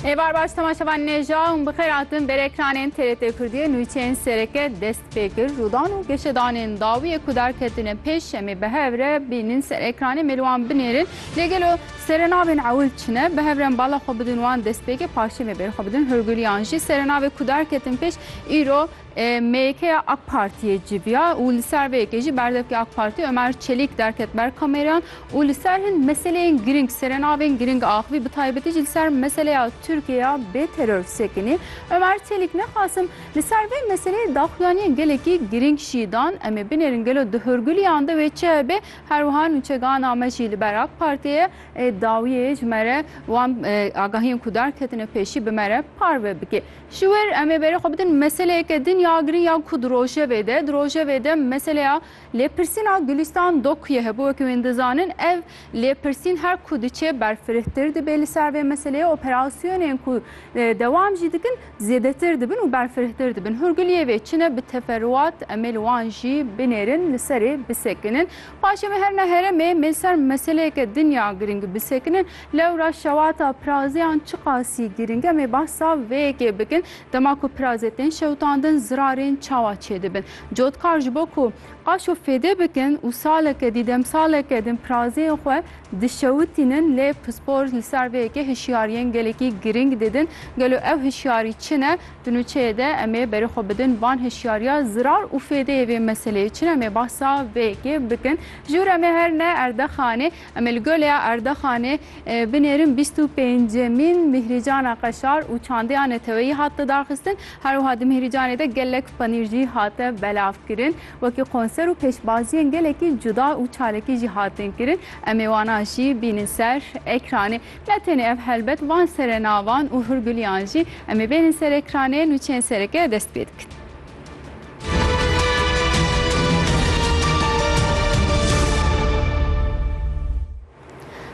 Ê bar baş temaşevan nêja û bixêr hatin ber ekranên TRT Kurdiyê nûçeyên sereke dest pê kir rûdan û geşedanên dawiyê ku derketine pêş şemê bi hev re bînin ser ekranê mêrwan binêrin lê gelo serenavên ewil çine bi hev re bala xwe bidin wan destpêkê paşê me bêr xwe bidin hurguliyan jî serenavê ku derketin pêş îro MYKya AK Partiyê civiya û li ser vê yekê jî berdevkê AK Partî Omer Çelîk derket ber kamereyan û li ser hin meseleyên girîng serenavên girîng axivî bi taybetî jî li ser meseleya Tirkiyeya bê teror sekinî Omer Çelîk Nexwasim li ser vê meseleyê daxuyaniyên gelekî girîng jî dan em ê binêrin gelo di hûrgiliyan de wê çi hebe herwiha nûçegana me jî li ber AK Partiyê dawiyê ji me re wan agahiyên ku derketine pêşî bi me re parve bike. Ji wir em ê berê xwe bidin meseleyeke din ya girîng ya ku di rojevê de, di rojevê de meseleya lêpirsîna Gulîstan Dokuyê hebû. Wekî wên dizanin ev lêpirsîn her ku diçe berfirehtir dibê li ser vê meseleyê, operasyonên ku dewam jî dikin zêdetir dibin û berfirehtir dibin. Hûrguliyê vê çi ne bi teferûat em ê li wan jî binêrin li serê bisekinin. Paşê me herna heremê me ser meseleyeke dinya girîng bisekinin. Lewra şewata pirazeyan çiqasî girîng e me behsa vê yekê bikin. Dema ku pirazê tên şewitandin zirarên çawa çêdibin. Cotkar ji bo ku qaşo fêdê bikin û saleke dî demsaleke din pirazeyên xwe dişewitînin lê pispor li ser vê yekê hişyariyên gelekî girîng didin. Gelo ew hişyarî çi ne? Di nûçeyê de em ê berê xwe bidin van hişyariya zirar û fêdeyê vê meseleyê. Çin em ê bahsa vê yekê bikin. Ji wir em ê her ne Erdaxanê, em ê li goleya Erdaxanê binêrin bîst û pêncemîn Mîhrîcana Qeşar û çandeya neteweyî hat lidarxistin. Her wiha di Mîhrîcanê de gelek panîr jî hate belavkirin. Wekî konser û pêşbaziyên gelekî cuda û çalakî jî hatin kirin. Em ê wana jî bînin ser ekranê. Ne tenê ev helbet van sere navan û hurguliyan jî em ê bêrin ser ekranê nûçeyên sereke dest pê dikin.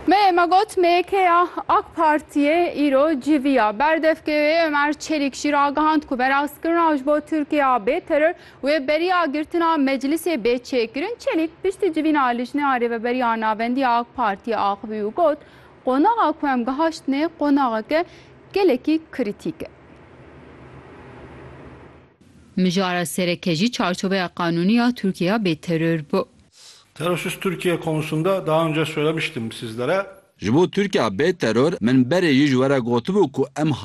Me me got MYK'ya AK Parti'ye îro civîya berdevkê wê Ömer Çelik jî ragihand ku berazkirina ji bo Tirkiyeya bê teror Wê beriya girtina meclisê bê çêkirin. Çelîk piştî civîna Lijneya Rêveberiya Navendî ya AK Partiyê axivî û got, Qonaxa ku em gihaştine qonaxeke gelekî kritîk e. Mijara sereke jî çarçoveya qanûnî ya Tirkiyeya bêteror bû. Terorsiz Türkiye konusunda daha önce söylemiştim sizlere. Ji bo Tirkiyeya bêteror min berê jî ji we re gotibû ku em,